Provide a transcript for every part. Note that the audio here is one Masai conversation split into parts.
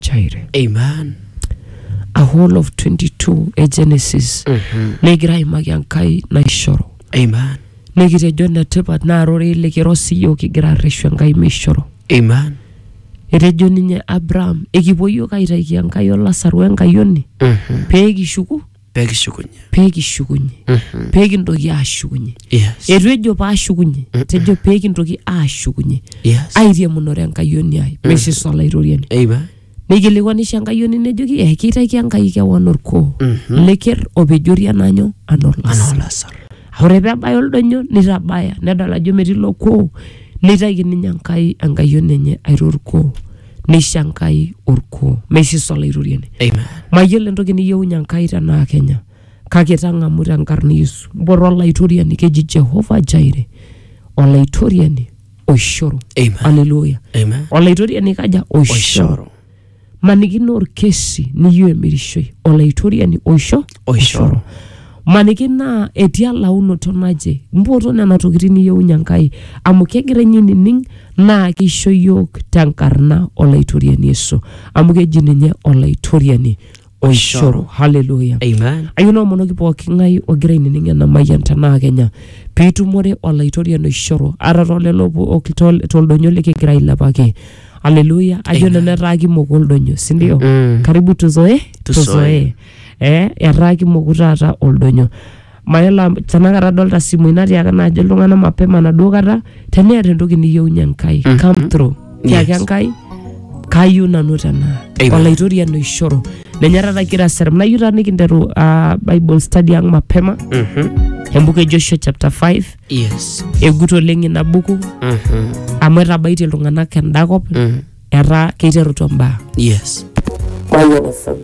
chaire amen a whole of 22 e genesis Mhm. negira aimaki enkai naishoru amen nikitejo netipat naa rorei likiro siyiok kigira arreshu enkai meishoru amen etejo ninye abraham ekipuo yiok aitaiki enkai olasaru enkayioni Mhm. pee kishuku pee kishukunye. pee kishukunye Mhm. pee kintoki aashukunye Yes. eitu ejo paashukunye tejo pee kintoki aashukunye Yes. airiamunore enkayioni ai meshis olaitoriani Amen. neikilikuanisho enkayioni nejoki eh keitaiki enkai kewan orkuo leker opejori enanyo anaa olasa Anaolasar. ore pee ebaya oldonyo nitabaya nedol ajo metii ilo kuo neitaiki ninye enkai enkayioni enye airo orkuo neisho Enkai orkuo, meisho Yesu olaitoriani. Amen. Mayiolo entoki niyieunye Enkai tenaa Kenya, kake tang'amu tenkarna Yesu. Mpoto olaitoriani keji Jehovah Jireh, olaitoriani oishoru. Amen. Haleluya. Amen. Olaitoriani kaja? Oishoru. Oishoru. Maniki naa orkesi niyieu emirishoi, olaitoriani oisho oishoro maniki naa etii elaunoto naje mpoto nena tokitin niyieunyie enkai amu kegira ninye ainining naa keisho yiok tenkarna olaitoriani yesu amu keji ninye olaitoriani oishoro haleluya Amen. ayieu naomonoki pooki ng'ae ogira ainining ena mayian tenaa kenya piitumore olaitoriani oishoro ata tolelo po- ok- tol- toldonyo likigira ailepaki haleluya ajo nanu etaa kimok oldonyo sindio Mm. karibu tuzoe Tuzoe. tuzoe eh, etaa kimoku taata oldonyo mayiolo am- tenakata adolta simui natiaka naajo iltung'anak mapema naduo kata teneeta entoki niyieunye enkai Mhm. come through tiaki Yes. enkai kayieu nanu tenaa Amen. olaitoriani oishoru ninye taata kigira aserem nayieu taa nikinteru ah, bible study ang mapema Mhm. embuku e joshua chapter 5 Yes. egut oleng ina buku Mhm. amu etabaitie iltung'anak enda kop Mhm. etaa keiterutua mbaa Yes. Mayian FM.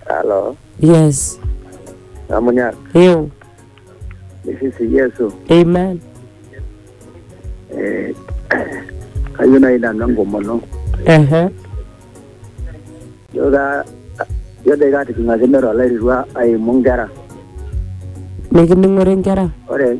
Halo, yes Amunyara. ew This is Yesu. amen Eh, kayieu naaji nanu enkomono. ehe Ijo ka ijo doi kaatijing'akine tolairirua aimu inkera. mikining'ore nkera Ore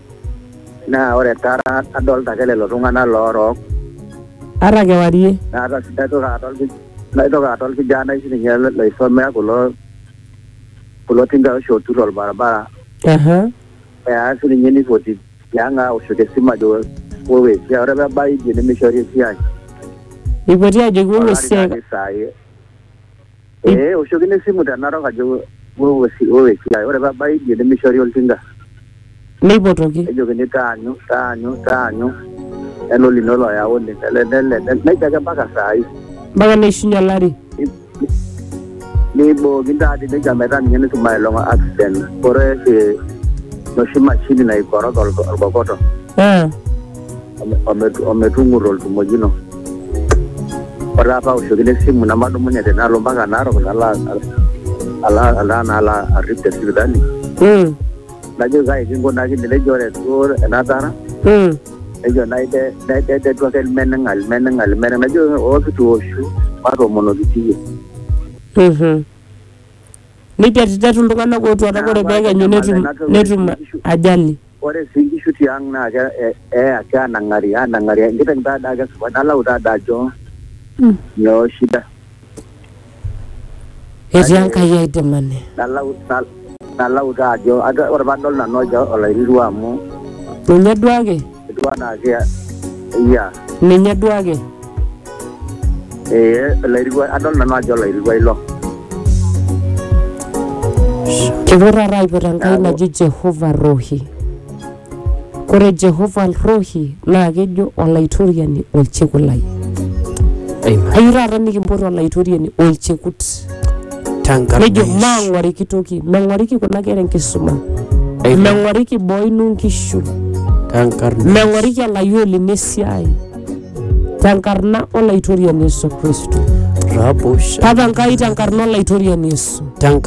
Naa ore taata adolta ake lelo tung'anak loorook. Ata kewarie. Naitoki adol naitoki adol kijanai sininye loisomea kulo kulo tingai oshi ootur olbaribara. Eya sininye nipoti tiang' aoshoki esimu ajo wou esiai. Ore peebau idie nemeishori esiai. Eipoti ajoki wou esiai. Ee, oshokino esimu te Narok ajo wewe siai, ore pee ebaya idie nemeishori oltinka. Neipotoki. Nejokini taanyu, taanyu, taanyu, nelo lino loyauni, nele, nele, nele, nejia ake mpaka saa hii. Mpaka neishunye olari. Neibookini taadi nejia metaa ninye netum aelong'a accident. Ore oshi enoshi mashini naikorog olkokoto. Ee. ometu- ometung'uto oltumojino ore taata aoshokino esimu nemadumunye te nalo mpaka narok nalo a- ala ala nalo arrip te sipitali Mm. najoki kai kinkunakine nejo ore duo enatara Mm. nejo naide naidedetu ake ilmeneng'a ilmeneng'a ilmeneng'a najo ookitooshu matoomonoki siiyie Mhm. Neitetitetu iltung'anak ootuata ore pee ekenyu netum netum ajali. Ore sii nkishu tiang naa ke, eya keanang'ari anang'ari enkiteng taa daa kesupat nalau taa daa ajo nyoo shida. Etii Enkai aidimani. Nalau, nalau taa ajo ore padol nanu ajo olairirua amu. Ninye duake. Etiu anaa ke, yeah. Ninye duake. ee olairua adol nanu ajo olairua ilo Kepuo taata aipot Enkai naji Jehova Rohi. Ore Jehova Rohi naa kejo olaitoriani olchekut lai. Amen. Ayieu taata nikimpot olaitoriani olchekut. Tenkarna Nejo Yesu. maang'oriki toki, meng'oriki kuna kera enkisuma, Amen. meng'oriki boo ino nkishu, Tenkarna meng'oriki olayioni lino esiai. tenkarna olaitoriani Yesu Kristo. Rabosh. Papa Nkai tenkarna olaitoriani Yesu. Tenkarna